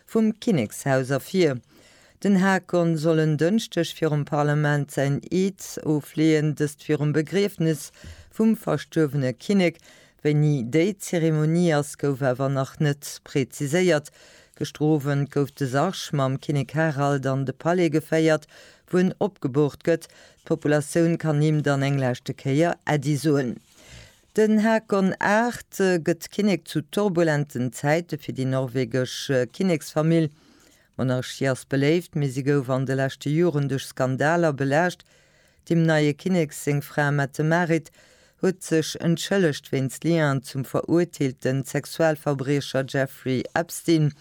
Vum Kinnekshaus ervir. Den Haakon soll en Dënschdeg virum Parlament säin Eed ofleeën, dëst virum Begriefnes vum verstuerwene Kinnek. Wéini déi Zeremonie ass, gouf awer nach net präziséiert. Gëschter Owend gouf de Sarg mam Kinnek Harald an de Palais geféiert, wou en opgeboort gëtt. D'Populatioun kann him dann eng leschte Kéier Äddi soen. Den Haakon Art gëtt Kinnek zu turbulenten Zäite fir déi norwegesch Kinneksfamill. D'Monarchie ass beléift, mee si gouf an de leschte Joren duerch Skandaler belaascht. Dem neie Kinnek seng Fra Mette-Marit huet sech entschëllegt wéinst Liaison zum verurteelte Sexualverbriecher Jeffrey Epstein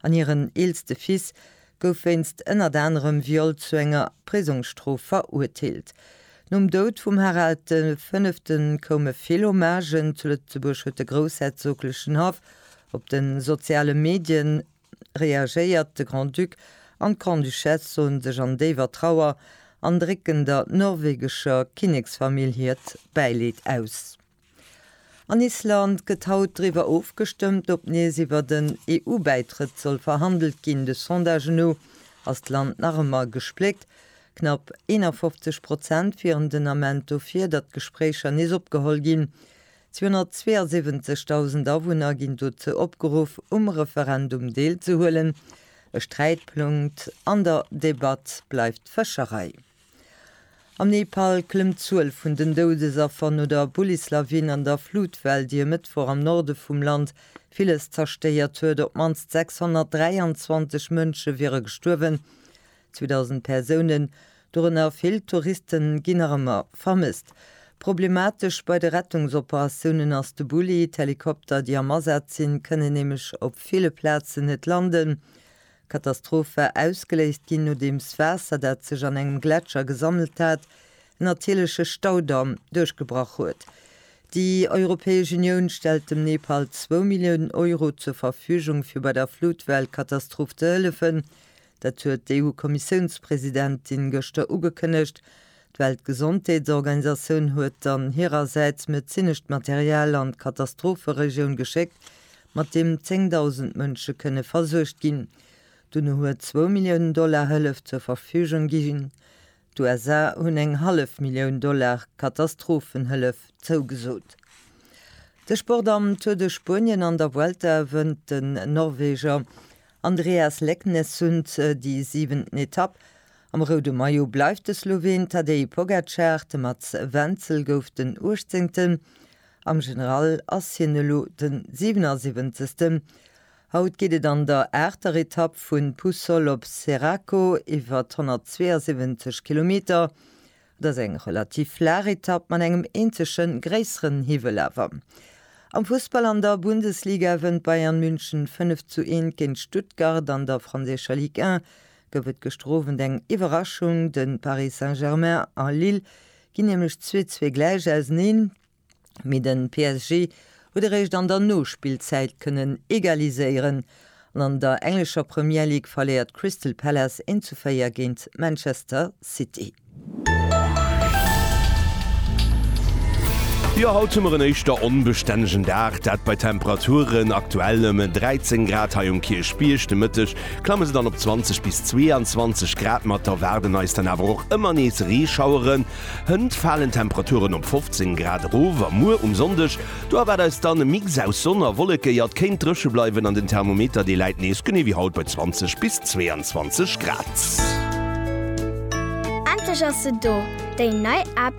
an hiren eelste Fils gouf wéinst ënnert anerem Viol zu enger Prisongsstrof verurteelt. Nom Doud vum Harald de Fënnefte koume vill Hommagen. Zu Lëtzebuerg huet de groussherzoglechen Haff op de soziale Medie reagéiert. De Grand-Duc an d'Grande-Duchesse soe sech an déiwer Trauer an drécken der norwegescher Kinneksfamill hiert Bäileed aus. An Island gëtt haut driwwer ofgestëmmt, ob nees iwwer den EU-Bäitrëtt soll verhandelt ginn. De Sondagen no ass d'Land nach ëmmer gespléckt. Knapp 51 Prozent wieren den Ament dofir, datt d'Gespréicher nees opgeholl ginn. 272.000 Awunner ginn dozou opgeruff, um Referendum deelzehuelen. E Sträitpunkt an der Debatt bleift d'Fëscherei. Am Nepal klëmmt d'Zuel vun den Doudesaffer no der Bullislawin an der Flutwell, déi e Mëttwoch am Norde vum Land villes zerstéiert huet. Op d'mannst 623 Mënsche wiere gestuerwen, 2.000 Persounen, dorënner vill Touristen, ginn nach ëmmer vermësst. Problematesch bei de Rettungsoperatiounen ass de Bulli. D'Helikopter, déi am Asaz sinn, kënnen nämlech op ville Plazen net landen. D'Katastroph war ausgeléist ginn, nodeems Waasser, dat sech an engem Gletscher gesammelt hat, en natierleche Staudamm duerchgebrach huet. Déi Europäesch Unioun stellt dem Nepal zwou Milliounen Euro zur Verfügung, fir bei der Flutwell-Katastroph ze hëllefen. Dat huet d'EU-Kommissiounspresidentin gëschter ugekënnegt. D'Weltgesondheetsorganisatioun huet dann hirersäits medezinescht Material an d'Katastropheregioun geschéckt, mat deem 10.000 Mënsche kënne versuergt ginn. D'UNO huet zwou Milliounen Dollar Hëllef zur Verfügung ginn, d'USA hunn eng hallef Millioun Dollar Katastrophenhëllef zougesot. De Sport Am Tour de Spuenien an der Vuelta wënnt den Norweger Andreas Leknessund déi siwenten Etapp. Am roude Maillot bleift de Sloween Tadej Pogacar, de Mats Wenzel gouf den 18. Am General ass hien elo de 77. Haut geet et an der aachter Etapp vu Pusol op Serraco iwwer 172 Kilometer. Et ass eng relativ flaach Etapp mat engem eenzege gréisseren Hiwwel awer. Am Fussball an der Bundesliga wënnt Bayern München 5 zu 1 géint Stuttgart. An der franséischer Ligue 1 gouf et gëschter Owend eng Iwwerraschung, de Paris Saint-Germain a Lille Ginn nämlech zwee zwee gläich auseneen, mee den PSG huet eréischt an der Nospillzäit kënnen egaliséieren an an der englescher Premier League verléiert Crystal Palace 1 zu 4 géint Manchester City. Jo, haut hu mer en éischter onbestännegen Dag, dat bei Temperaturen, aktuell nëmmen 13 Grad hei um Kierchbierg, de Mëtteg Klamme se dann op 20 bis 22 Grad mat, da waarden eis dann awer och ëmmer nees Reeschaueren. Hënt falen d'Temperaturen op 15 Grad erof a muer um Sonndeg, do erwaart eis dann e Mix aus Sonn a Wolleke. Jo, et kéint dréche bleiwen an den Thermometer, dee läit nees genee wéi haut bei 20 bis 22 Grad. Endlech ass se do, déi nei App!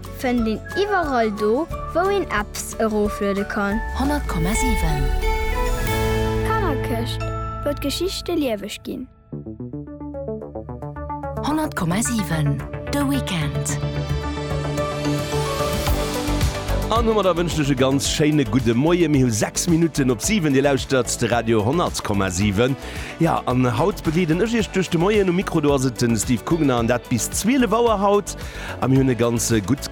Fënnt een iwwerall do wou een Apps erofluede kann. 100,7. Kannerkëscht, wou d'Geschichte lieweg ginn. 100,7. De Weekend. An hu mat der wënschen ech e ganz schéine gudde Moie. Mir hu 6 Minutten op 7. Dir lauschtert de Radio 100,7. Ja, an haut begleeden ech iech duerch de Moien. Um Mikro do ass et den Steve Kugner, an dat bis 12 Auer haut, a mir hunn e ganze gutt.